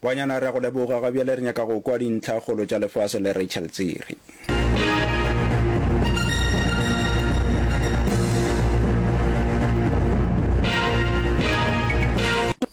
Banyana re a go leboga, ga bjale re nyaka go kwa dintlha kgolo tša lefase le Rachel Tsiri.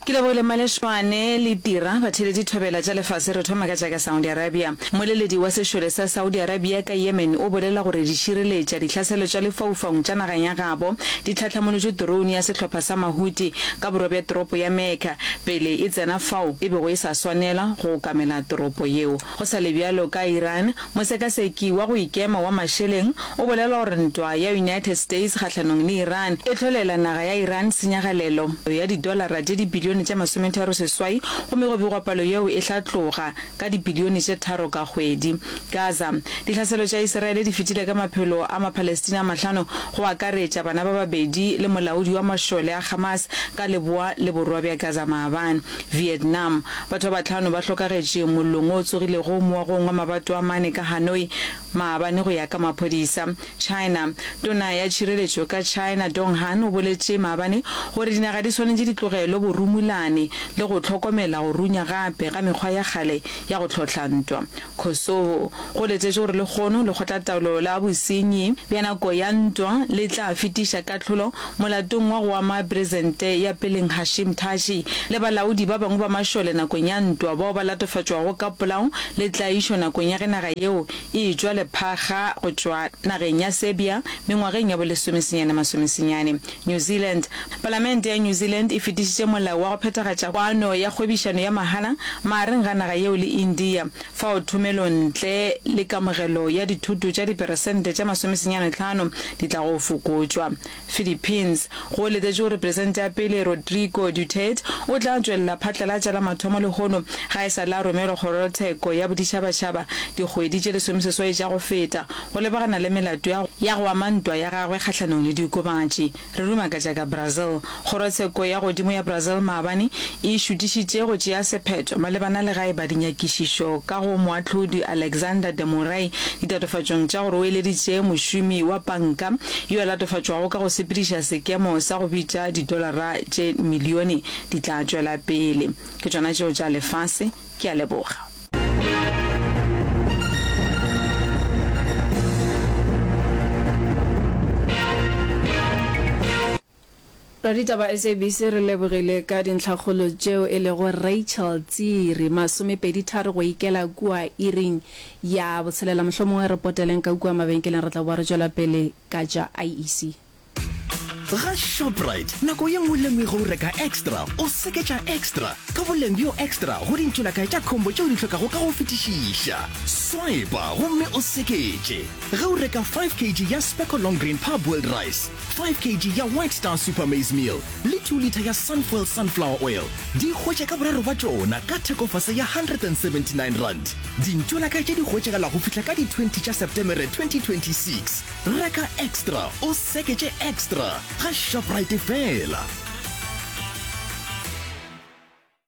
Ke lebogile Malešwane le Tira, batheeletši thobela tša lefase. Re thoma ka tša ka Saudi Arabia. Moleledi wa sešole sa Saudi Arabia ka Yemen o bolela gore dišireletša dihlaselo tša lefaufaung tša nageng ya gabo di tlhahlamolotšwe drone ya sehlopha sa Mahuti ka borwa bja toropo ya Mecca, pele e tsena fao e bego e sa swanela go okamela toropo yeo. Go sa le bjalo, ka Iran, mosekaseki wa go ikema wa mašeleng o bolela gore ntwa ya United States kgahlanong le Iran e hlolela naga ya Iran tsenyagalelo ya didolara tše dibilione tše masometharo seswai gomme go begwa palo yeo e tla tloga ka dibilione tše tharo ka kgwedi. Gaza, Dihlaselo tša Isiraele di fetile ka maphelo a Mapalestina a mahlano, go akaretša bana ba babedi le molaodi wa mašole a Hamas ka leboa le borwa bja Gaza maabane. Vietnam, Batho ba bahlano ba hlokagetše mollong o tsogilego moagong wa mabato a mane ka Hanoi maabane go ya ka maphodisa. China. Tona ya tšhireletšo ka China Dong Han o boletše maabane gore dinaga di swanetše di tlogelo borumulane le go hlokomela go runya gape ga mekgwa ya kgale ya go hlohla ntwa. Kosovo. Go letetšwe gore lehono lekgotlataolo la bosenyi bja nako ya ntwa le tla fetiša kahlolo molatong wa go ama presente ya peleng Hashim Thaci le balaodi ba bangwe ba mašole nakong ya ntwa bao ba latofatšwago ka polao le tlaišo nakong ya ge naga yeo e etšwa lephaga go tšwa nageng ya Serbia mengwageng ya bolesomesenyane-masomesenyane. New Zealand, Palamente ya New Zealand e fetišitše molao wa go phethagatša kwano ya kgwebišano ya mahala magareng ga naga yeo le India, fao thomelontle le kamogelo ya dithoto tša diperesente tše masomesenyane tlhano di tlago fokotšwa. Philippines. Go letetšwe gore Peresente ya pele Rodrigo Duterte o tla tšwelela phatlalatša la mathomo lehono ga e sa le a romelwa Kgorotsheko ya Boditšhabatšhaba dikgwedi tše lesomeseswai tša go feta go lebagana le melato ya ya go ama ntwa ya gagwe kgahlanong le diokobatši. Re ruma ka tša ka Brazil. Kgorotsheko ya godimo ya Brazil maabane e šutišitše go tšea sephetho malebana le ga e ba dinyakišišo ka go Moahlodi Alexander de Moraes ditatofatšong tša gore o eleditše mošomi wa panka yo a latofatšwago ka go sepediša sekemo sa go bitša didolara tše milione, di tla tšwela pele. Ke tšona tšeo tša lefase. Ke a leboga. Raditaba SABC re lebogile ka dintlhakgolo tšeo e lego Rachel Tsiri, masomepedi tharo go ikela kua iring ya botshelela. Mohlomongwe re poteleng ka kua mabenkeleng re tla boa re tšwela pele ka tša IEC. Ga Shoprite nako ye nngwe le nngwe ge o reka extra o seketša extra ka boleng bjo extra go dintšhelakae tša khombo tše o di hlokago ka go fetišiša. Swipa gomme o seketše ge o reka 5 kg ya Specco Long Grain Parboiled Rice. 5 kg ya white star super maize meal le 2 litre ya sunfuel sunflower oil di hwetša ka boraro ba tšona ka thekofase ya r179 dintšo la ka tše di hwetšagala go fihla ka di 20 tša septemere 2026 reka extra o seketše extra ga shoprite fela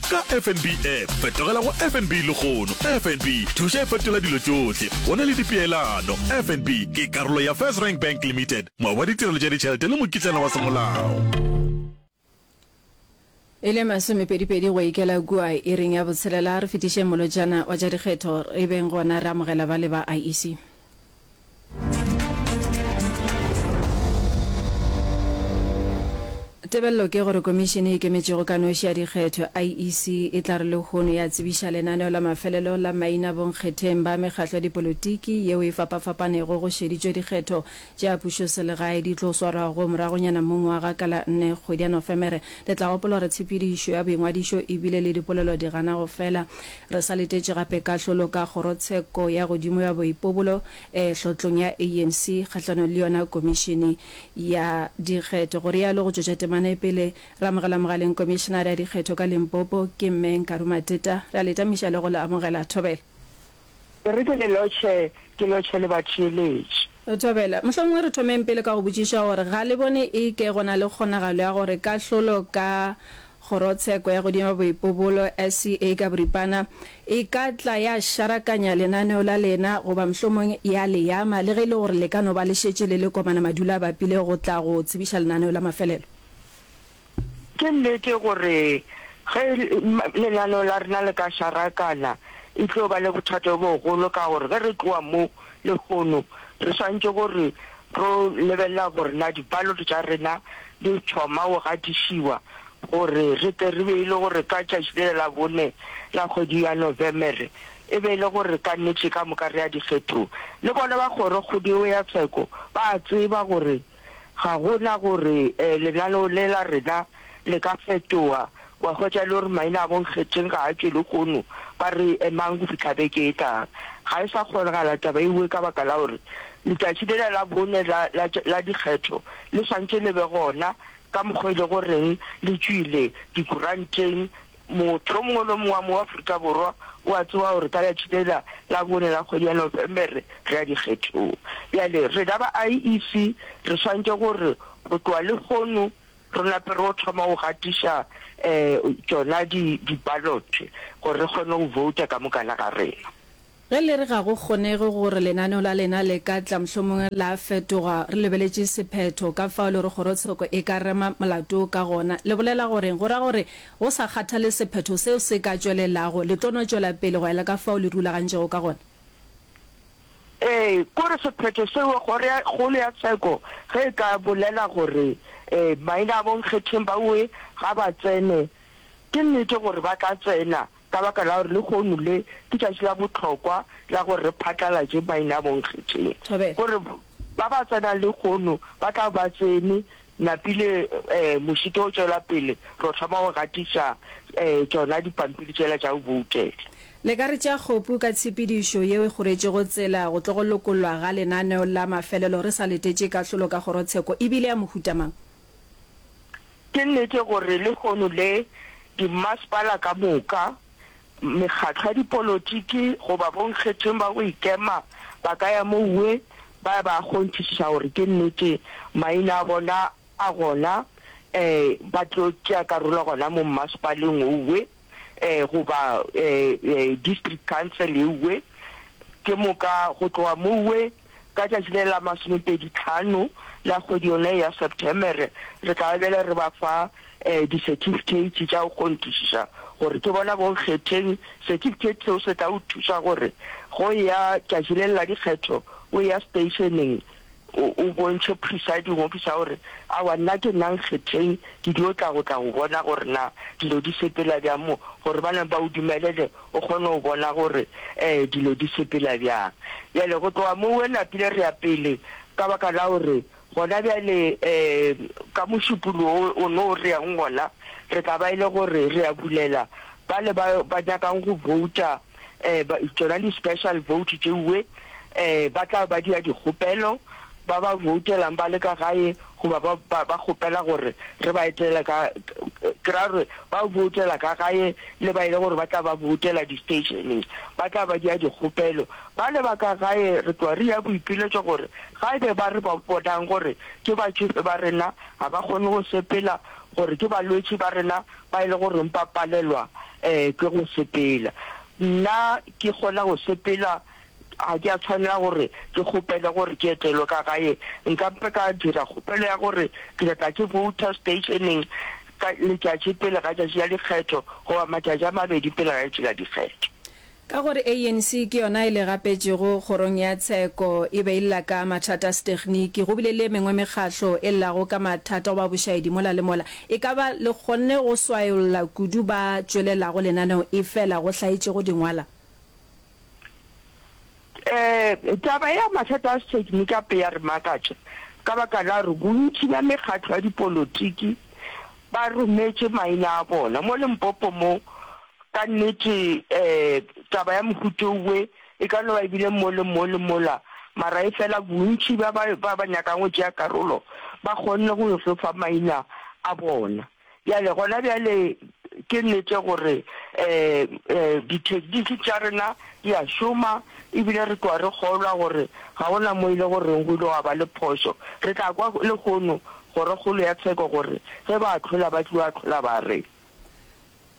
Ka FNB app, fetogela go FNB lehono. FNB, thuša e fetola dilo tšohle. Go na le dipeelano. FNB ke karolo ya First Rank Bank Limited, moabi wa ditirelo tša ditšhelete le mokitlana wa semolao. E le masomepedipedi go ikela kua iring ya botshelela, re fetišeng molotšana wa tša dikgetho, re beng gona re amogela ba le ba IEC. Tebello ke gore Komišene e Ikemetšego ka Noši ya Dikgetho, IEC, e tla re lehono ya tsebiša lenaneo la mafelelo la maina bonkgetheng ba mekgatlo ya dipolotiki yeo e fapafapanego go šeditšwe dikgetho tša pušoselegae di tlo swarwago moragonyana mo ngwaga ka la nne kgwedi ya Nofemere. Le tla gopola gore tshepedišo ya boingwadišo e bile le dipolelo di gana go fela Re sa letetše gape kahlolo ka Kgorotsheko ya godimo ya Boipobolo Tlotlong ya ANC kgahlanong le yona Komišene ya Dikgetho, go realo go tšwetša temana e pele. Re amogela mogaleng Komišenare ya Dikgetho ka Limpopo, ke Mme Nkaru Mateta. Re a le tamiša le go le amogela thobela. E re ke le lotšhe, ke lotšhe le batheeletši. Thobela, Mohlomongwe re thomeng pele ka go botšiša gore ga le bone e ke go na le kgonagalo ya gore kahlolo ka Kgorotsheko ya Godimo Boipobolo, SCA ka boripana, e ka tla ya šarakanya lenaneo la lena goba mohlomongwe ya le ama, le ge e le gore le ka no ba le šetše le le Kopana Madula a bapile go tla go tsebiša lenaneo la mafelelo? Ke nnete gore ge lenaneo la rena le ka šarakana e tlo ba le bothata bo bogolo ka gore ge re tloga mo lehono re swanetše gore ro lebelela gore na di-ballot tša rena di thoma go gatišiwa gore re tle re be e le gore ka tšatši le la bone la kgwedi ya Novemere e be e le gore ka nnete ka moka re ya dikgethong. Le bona ba kgorokgodigo ya tsheko ba a tseba gore Ga go na gore lenaneo le la rena le ka fetoga. O a hwetša e le gore maina a bonkgetheng ga a tšwe lehono, ba re emang go fihla beke e tlang. Ga e sa kgonagala taba ewe ka baka la gore letšatši lela la bone la, la, la dikgetho le swantše le be gona, ka mokgwa e lego goreng le tšwile dikuranteng, Motho yo mongwe le yo mongwe wa mo wa Aforika Borwa o a tseba gore ka letšatši le la la bone la kgwedi ya Nofemere re ya dikgethong. Bjale rena ba IEC re swantše gore go tloga lehono re nape re yo thoma go gatiša um tšona di di ballot gore re kgone go vouta ka mokana ga rena. Ge le re ga go kgonege gore lenaneo la lena le ka tla mohlomong la fetoga, re lebeletše sephetho ka fao le gore kgorotsheko e ka rema molato wo ka gona. Le bolela goreng? Go ra gore go sa kgathale sephetho seo se ka tšwelelago, le tlo no tšwela pele go ya le ka fao le rulagantšego ka gona? Ee, kore sephetho seo Kgoro ya Kgolo ya Tsheko ge e ka bolela gore ee, maina a bonkgetheng baowe ga ba tsene, ke nnete gore ba ka tsena. ka baka la gore lehono le ke tšatši la bohlokwa la gore re phatlalatše Bainabonkgetheng gore ba ba tsenang lehono ba tla ba tsene napile um mošito o tšwela pele ro thoma go gatiša um tšona dipampiri tšela tša go boutela. Le ka re tšea kgopu ka tshepedišo yeo e kgoretšego tsela go tlo go lokollwa ga lenaneo la mafelelo re sa letetše kahlolo ka kgorotsheko e bile ya mohuta mang? Ke nnete gore lehono le dimmasepala ka moka, mekgatlo ya dipolotiki goba bonkgetheng ba go ikema ba ka ya mouwe ba ya ba kgonthišiša gore ke nnete maina a bona a gona, ee, ba tlo tšea karolo gona mo mmasepaleng wouwe. eh, goba eh, eh, district council eue ke moka go tloga moue ka tšatši le la masomepedi tlhano la kgwedi yone ya september re tla bele re ba fa um di-certificate tša go kgontisiša gore ke bona bo kgetheng certificate seo se tla o thusa gore go ya tšatši le la dikgetho o ya stationeng o, o bontšhe presiding officer gore, Aowa, nna ke nna Nkgetheng, ke dio tla go tla go bona gore na dilo di sepela bjang mo, gore ba neng ba o dumelele o kgone go bona gore um dilo di sepela bjang. Bjale go tloga mo we napile re ya pele, ka baka la gore gona bjale um ka mošupolo wo o no re yang gona, re tla ba e le gore re ya bulela bale ba, ba nyakang go vouta, um tšona di-special vote tšeuwe um ba tla ba dia dikgopelo ba ba voutelang ba le ka gae goba ba ba- ba kgopela gore re ba etele ka ke ra gore ba voutela ka gae le ba e le gore ba tla ba voutela di-stationeng ba tla ba dia dikgopelo ba le ba ka gae re tloa re ya boipiletšo gore ga ebe ba re ba bonang gore ke batšofe ba rena ga ba kgone go sepela gore ke balwetši ba rena ba e le goreng ba palelwa ke go sepela. Nna ke kgona go sepela, ga ke a tshwanela gore ke kgopele gore ke etelwe ka gae. Nka mpe ka dira kgopelo ya gore ke nyaka ke vouta stationeng ka letšatši pele ga tšatši la dikgetho goba matšatši a mabedi pele ga letšatši la dikgetho. Ka gore ANC ke yona e le gapetšego Kgorong ya Tsheko, e be e lla ka mathata a setekniki. Go bile le e mengwe mekgahlo e llago ka mathata goba bošaedi mola le mola. E ka ba le kgonne go swayolla kudu ba tšwelelago lenaneo efela go hlaetšego dingwala? Taba ya mathata a sethekni e ka pe ya re makatša ka baka la gore bontši bja mekgatlo ya dipolotiki ba rometše maina a bona. Mo Limpopo mo, ka nnete taba ya mohuto we e ka no ba e bile mo le mo le mola, mara efela bontši bja ba ba nyakang go tšea karolo ba kgonne go yo fo fa maina a bona. Bjale, gona bjale, ke nnete gore dithekniki tša rena di a šoma, e bile re tloga re kgolwa gore ga go na mo e le goreng go ile gwa ba le phošo. Re tla kwa lehono Kgorokgolo ya Tsheko gore ge ba ahlola ba tliwa ahlola ba reng.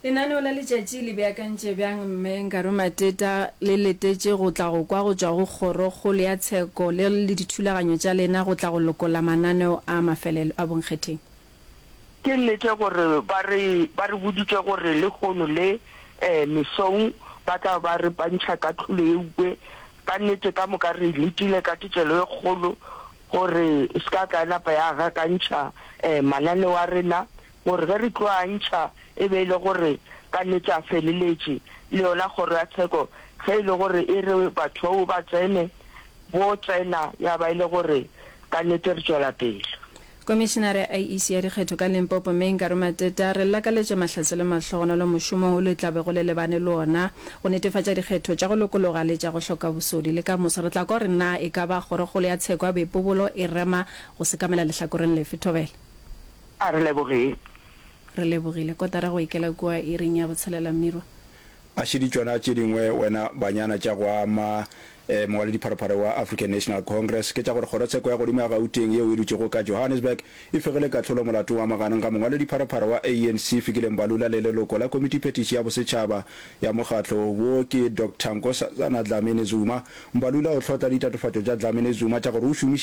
Lenaneo la letšatši le beakantše bjang? Mme Nkaru Mateta le letetše go tla go kwa go tšwa go Kgorokgolo ya Tsheko le le dithulaganyo tša lena go tla go lokolla mananeo a mafelelo a bonkgetheng. Ke nnete gore ba re ba re boditše gore lehono le mesong ba tla ba re pantšha kahlolo eupwe ka nnete ka moka re letile ka thetšelo e kgolo gore ska ka ya napa ya gakantšha mananeo a rena gore ge re tlo a ntšha e be e le gore ka nnete a feleletše, le yona kgoro ya tsheko ge e le gore e re batho bao ba tsene, bo tsena ya ba e le gore ka nnete re tšwela pele. Komišenare ya IEC ya dikgetho ka Limpopo, Mme Nkaro Matete, a re llakaletše mahlatse le mahlogonolo mošomong wo le tla bego le lebane le wona go netefatša dikgetho tša go lokologa le tša go hloka bosodi. Le ka moso re tla kwa gore na e ka ba kgorokgolo ya tsheko ya boipobolo e rema go sekamela lehlakoreng lefe. Thobela. A re lebogeng. Re lebogile. Kotara go ikela kua iring ya botshelela, mmirwa. A šedi tšona tše dingwe wena banyana tša go ama eh, mongwaledipharopharo wa African National Congress, ke tša gore kgorotsheko ya godimo ya Gauteng yeo e dutšego ka Johannesburg e fegile kahlolo molatong wa maganong ga mongwaledipharopharo wa ANC Fikile Mbalula le leloko la Komitiphetiši ya Bosetšhaba ya mokgatlo wo ke Doctor Nkosazana Dlamini-Zuma. Mbalula o hlotla ditatofatšo tša Dlamini-Zuma tša gore o šomišitše